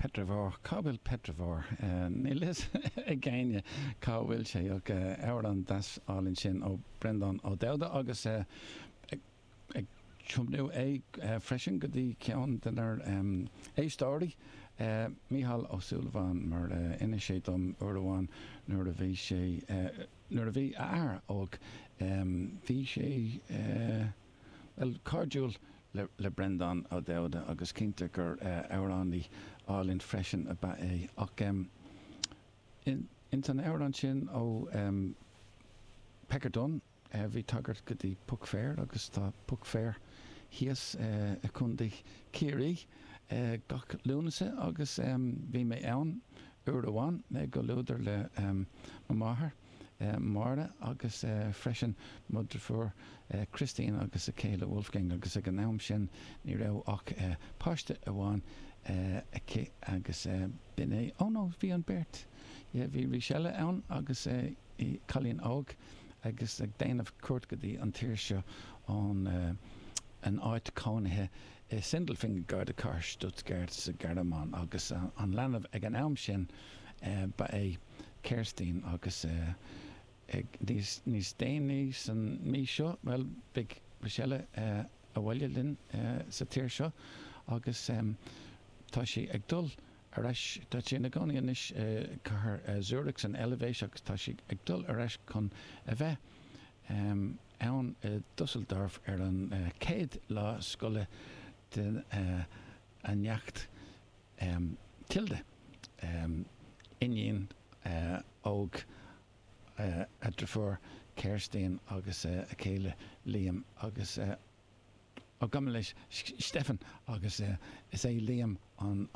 Petravore, cá bhfuil Petravore? Níl fhios ag éinne cá bhfuil sé. Amhrán deas álainn sin ó Breandán Ó Dubhda agus ag tiomnú é freisin go dtí ceann de nár éisteoirí, Mícheál Ó Súilleabháin, mar a inis sé dom uair amháin nuair a bhí sé, nuair a bhí a athair óg, bhí sé. Bhuel, cairdiúil le Breandán Ó Dubhda agus cinnte gur amhránaí álainn freisin ab ea é. Ach ins an amhrán sin ó Pecker Dunne bhí tagairt go dtí Puck Fair agus tá Puck Fair thíos i Contae Chiarraí gach Lúnasa agus bhí mé ann uair amháin i gcomhluadar le mo máthair. Máire agus freisin mo drifiúr Christine agus a céile Wolfgang agus ag an am sin ní raibh ach páiste amháin aici agus b'in é, oh no bhí an beirt yeah bhí Michelle ann agus cailín óg agus ag déanamh cuairt go dtí an tír seo ón an áit cónaithe i Sindelfingen gar do cathair Stuttgart sa Ghearmáin agus an leanbh ag an am sin ba é Kerstin agus ag níos déanaí san mí seo, bhuel, beidh Michelle abhaile linn sa tír seo agus tá sí ag dul ar ais, tá sí ina cónaí anois i cathair Zurich san Eilbhéis agus tá sí ag dul ar ais chun a bheith ann i Dusseldorf ar an chéad lá scoile den a neacht Tilda, iníon óg a driofúr Kerstin agus a céile Liam agus Ó gabh mo leithscéal, Stefan agus is é Liam an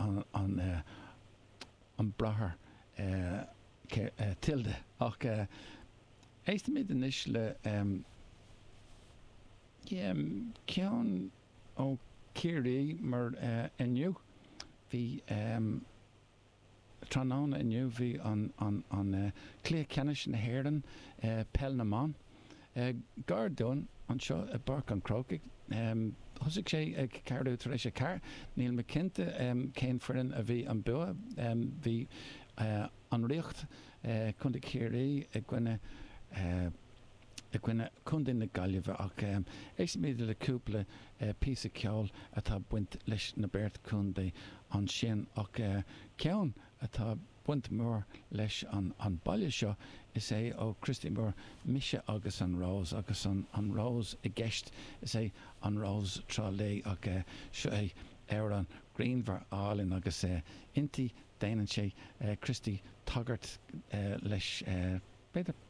bráthair Tilda ach éistimid anois le ceann Ó Ciarraí mar inniu. Bhí tráthnóna inniu, bhí an cluiche ceannais na hÉireann i peil na mban. Gar dúinn anseo i bPáirc an Chrócaigh. Thosaigh sé ag ceathrú tar éis a ceathair. Níl mé cinnte cén foireann a bhí an bua. Bhí an Ríocht, Contae Chiarraí i gcoinne. i gcoinne Contae na Gaillimhe ach éistfimid le cúpla píosa ceoil atá ag baint leis na beirt chontae ansin ach ceann atá ag baint mór leis an baile seo is é ó Christy Moore 'Mise agus an Rós' agus an Rós i gceist is é An Rós Trá Lí ach seo é amhrán grianmhar álainn agus inti déanann sé Christy tagairt leis b'fhéidir.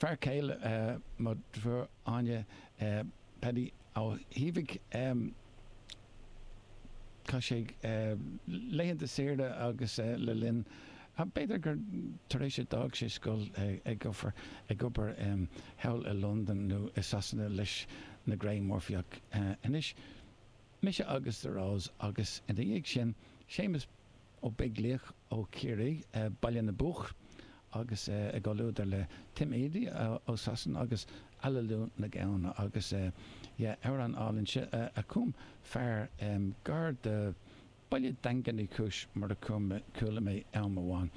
fear céile mo dheirfiúr Áine, Paddy Ó hÍbhigh. Chaith sé laethanta saoire agus le linn, b'fhéidir gur tar éis a d'fhág sé scoil ag obair thall i Londain nó i Sasana leis na Grey Murphys ach anois, mise agus The Rose agus ina dhiaidh sin Séamus Ó Beaglaoich ó Chiarraí, Baile na bPoc agus i gcomhluadar le Tim Edey ó Sasana agus Aililiú na Gamhna agus yeah amhrán álainn é a chum fear gar do Baile Daingean Uí Chúis mar a chuala mé am amháin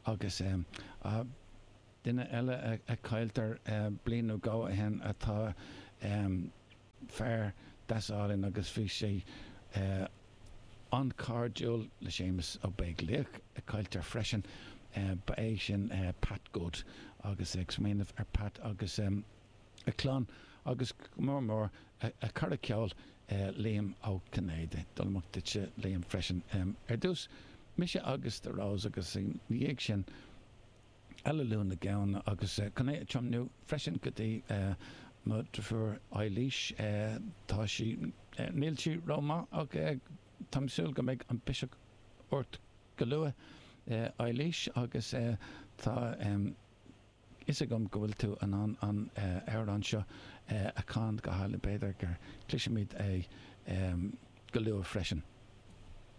agus ah duine eile a cailleadh bliain nó dhó ó shin a tá fear deas álainn agus bhí sé an-chairdiúil le Séamus Ó Beaglaoich, a cailltear freisin. Ba é sin Pat Good agus ag smaoineamh ar Pat agus a clann agus go mór mór a cara ceoil Liam Ó Cinnéide. Dul amach duitse Liam freisin ar dtús, mise agus The Rose agus ina dhiaidh sin. Aililiú na Gamhna agus chun é a tiomnú freisin go dtí mo dhrifiúr Eilís. Tá sí, níl sí ró maith ach táim ag súil go mbeidh an biseach ort go luath Eilís agus tá fhios agam go bhfuil tú in ann an amhrán seo a chan go hálainn, b'fhéidir go gcloisfimid é go luath freisin.